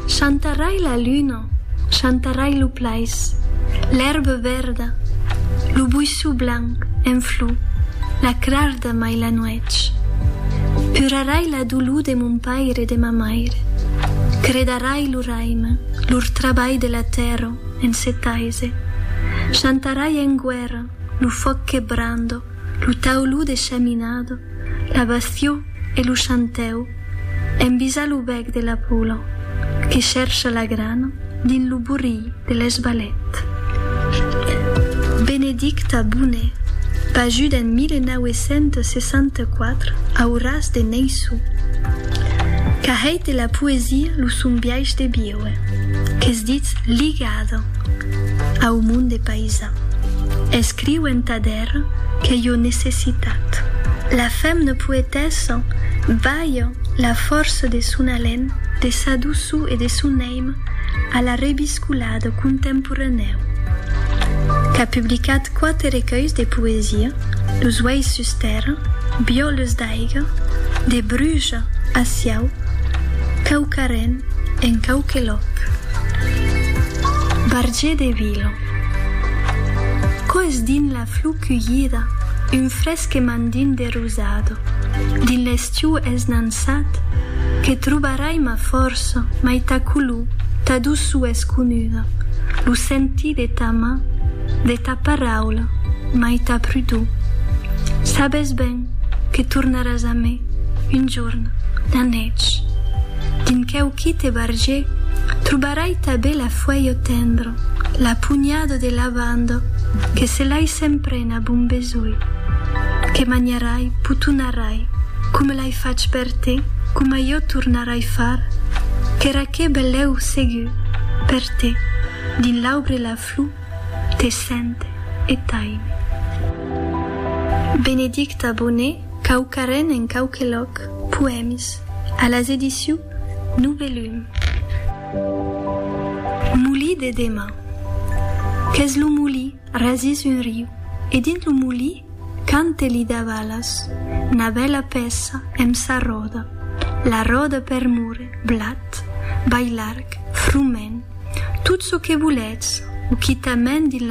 Chantarrai la luna, chantarrai lo plais, l'èrba vèrda, lo buisson blanc en flor, la crarda mai la nuèch. Purarai la dolor de mon paire e de ma maire, credarai lo raime, lor trabalh de la tèrra en se taise, chantarai en guèrra lo fòc que brando, Lo tauló de chaminada, la bastió e lo chantèu envisa lo bèc de la pola que chèrcha la grana dins lo borrilh de l'esbalet. Benedicta Boné, pajuda en 1964 au ras de Neissó, qu'a hèit de la poesia lo son biais de viure, qu'es ditz ligada au monde païsan, escriu entà de. Mèr que jo necessitat. La fem ne poetèssa, balha la fòrça de son alen, de sa doçor e de son èim a la rebiscolada contemporanèu. Qu'a publicat quate recuelhs de poesia, Los uelhs sus tèrra, Biòles d'aiga, De bruja a siau, Quauquarren en quauque lòc. Barger de Vila. Quò es dins la flor culhida un fresque mandin de rosado dins l'estiu es nançat que trobarai ma fòrça mai ta color ta doçor es conuda lo sentir de ta man de ta paraula mai ta prudor sabes ben que tornaràs a me un jorn la nètge dins queu quite barger trobarai ta bela Fuèio tendre, la punhada de lavanda que se l'ai s'emprena bon besoir, que manharai, potonarai, coma l'ai fach per te, coma jo tornarai far, qu'èra que belèu segur, per te, dins l'aubre la flor te sente e t'aime. Benedicta Boné, Quauquarren en quauque lòc, Poèmes, a las edicions Novellum. Molí de Dema. Qu'es lo molí, rasís un riu, e dins lo molí cante li davalas, 'na bèla pèça emb sa ròda, la ròda per mure, blat, bailarg, frument, tot çò que volètz, o quitament dins la